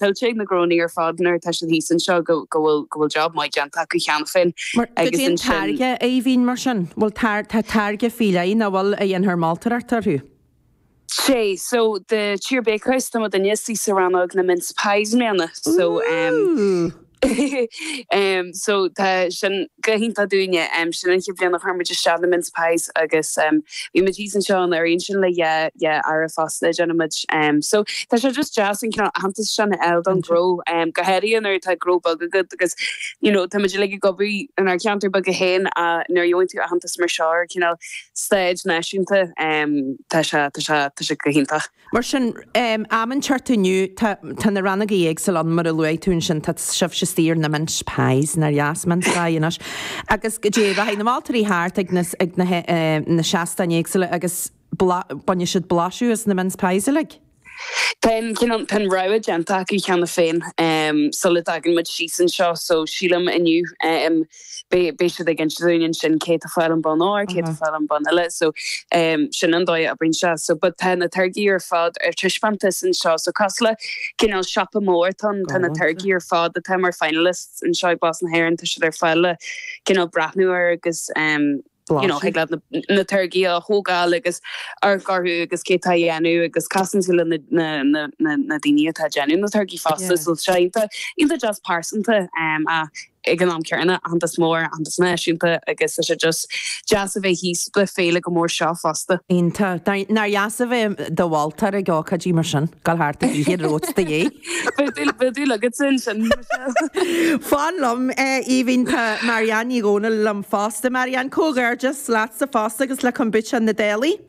tuillte ag na gnónna ar fad nuair atá siad thíos anseo go bhfuil go bhfuil job maith déanta acu cheana féin. Mar goidé an táirge a bhíonn mar sin, bhfuil tá táirge faoi leith, an bhfuil a dhéanfar moltóireacht orthu? Sé, so the Tír Bakehouse tá muidinne istigh sa rannóg na mince pies i mbliana so. Em so tá sin go hiontach dúinne, em sin an chéad bhliain a chuir muid isteach na mince pies agus em bhí muid thíos anseo anuraidh ansin le dhá dhá earra fosta a dhéanann muid. Em so tá sé just deas an cineál aitheantas sin a fháil don ghnó, em go háirithe nuair atá gnó beag agat agus you know tá muid uilig ag obair inár gceantar beaga féin ach nuair a gheobhann tú aitheantas mar seo ar cineál stáitse náisiúnta em tá sé tá sé tá sé go hiontach. Mar sin, amuigh ansin thart inniu, tá, tá na rannógaí éagsúla ann, mar a luaigh tú ansin, tá sibhse istigh ar na mince pies, nár dheas, mince pie, anois, agus goidé, rachaidh na moltóirí thart ag na, ag na, na seastáin éagsúla agus bla, bainfidh siad blaiseadh as na mince pies uilig. Tá an, cineál, tá an rogha déanta acu cheana féin, sula dtagann muid síos anseo, so sílim inniu. beidh siad ag insint dúinn ansin cé atá ag fáil an bonn óir, cé atá ag fáil an bonn eile, so sin an dóigh a oibríonn sé. So but tá na táirgí ar fad ar taispeántas anseo, so cosúil le cineál siopa mór, tá na táirgí ar fad atá mar finalists anseo ag Blas na hÉireann, tá siad ar fáil le cineál breathnú air agus. Blaiseadh. Thig leat na táirgí a thógáil agus amharc orthu agus cé atá á dhéanamh agus casann tú le na daoine atá ag déanamh na táirgí fosta so tá sé iontach deas pearsanta ach ag an am céanna aitheantas mór, aitheantas náisiúnta agus tá sé just deas a bheith thíos le féile chomh mór seo fosta. Iontach. Nár dheas a bheith i do mholtóir ag ócáidí mar sin, ag dul thart ag ithe romhat de dhíth! Bhí le go sin sin. Fan liom Aoibhín tá Marianne Ní Dhomhnaill liom fosta. Marianne, comhghairdeas leatsa fosta agus le Kombucha na Dálaigh.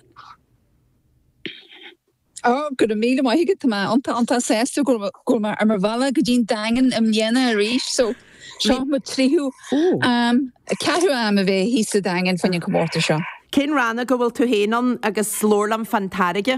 Oh, go raibh míle maith agat, tá mé iontach iontach sásta go raibh mé ar mo bhealach go dtí an Daingean i mbliana arís so seo mo tríú um, ceathrú am a bheith thíos sa Daingean faoin an comórtas seo. Cén rannóg a bhfuil tú féin ann agus labhair liom fán táirge?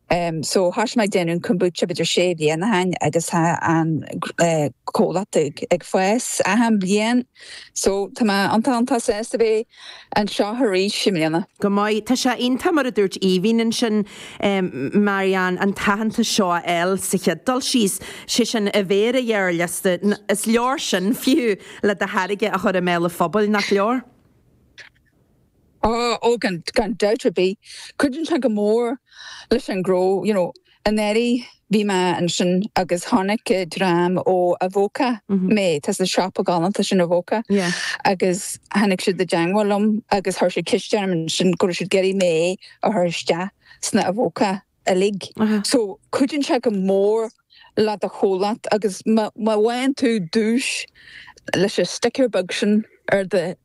So thoisigh mé ag déanamh kombucha b'fheidir sé bliana ó shin agus tá an comhlacht ag fás achan bliain so tá mé iontach iontach sásta bheith anseo arís i mbliana. Go maith. Tá sé iontach mar a dúirt Aoibhinn ansin, Marianne, an t-aitheantas seo a fháil sa chéad dul síos, sé sin a bheith ar an ghearrliosta. Is leor sin, fiú, le do tháirge a chur i mbéal an phobail, nach leor? Ó, gan dabht ar bith, cuireann sé go mór leis an ngnó, you know. Anuraidh bhí mé ansin agus tháinig dream ó Avoca, em, tá an siopa galánta sin Avoca, agus tháinig siad i dteangmháil liom agus chuir siad ceist orm ansin go raibh siad ag iarraidh mé a chur isteach sna Avoca. uilig. So, cuidíonn sé go mór le do chomhlacht agus má bhain tú duais leis an sticker beag sin ar do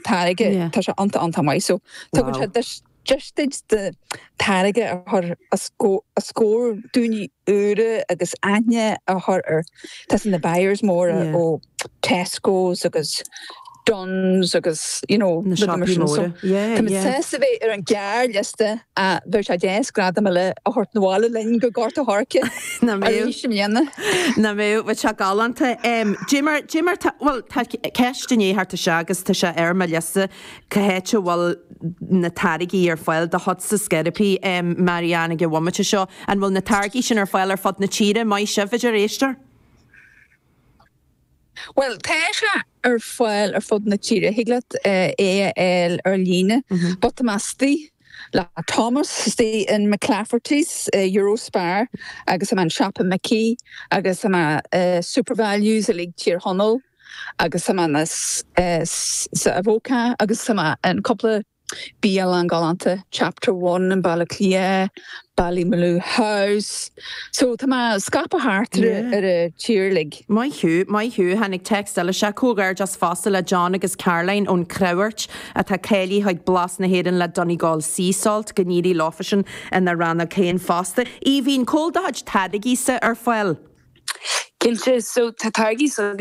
táirge, tá sé iontach iontach maith. So, tugann sé deis duit do táirge a chur os comhair daoine. úra agus aithne a chur ar, tá a fhios agat, na buyers móra ó Tesco's agus Dunnes agus you know na siopaí móra. Tá muid sásta a bheith ar an ghearrliosta ach bheadh sé deas gradam eile a thabhairt na bhaile linn go Gort a' Choirce arís i mbliana. Nach mbeadh sé galánta. Dé mar dé mar tá bhuel tá ceist i ndiaidh theacht isteach agus tá sé ar mo liosta. Cá háit a bhfuil na táirgí ar fáil do chuidse ar scor ar bith, Marianne, ag an bhomaite seo. An bhfuil na táirgí sin ar fáil ar fud na tíre, maith sibh, a deir éisteoir? Bhuel, tá sé ar fáil ar fud na tíre. Thig leat é a fháil ar líne. But tá mé istigh le Thomas istigh in McClafferty's, Euro Spar, agus tá mé in Siopa Mhicí, agus tá mé in Supervalues uilig Tír Chonaill. agus tá mé sa Avoca agus tá mé in cúpla bialann galánta, Chapter One in Baile Átha Cliath, Ballymaloe House, so tá mé scaipthe thart ar an tír uilig. Maith thú, maith thú. Tháinig text eile seo, Comhghairdeas fosta le John agus Caroline ón Creabhairt atá cáilithe chuig Blas na hÉireann le Donegal Sea Salt, go n-éirí leofaisan ina rannóg féin fosta. Aoibhín, cá bhfuil do chuid táirgíse ar fáil? Cinnte, so tá táirgí s'againne.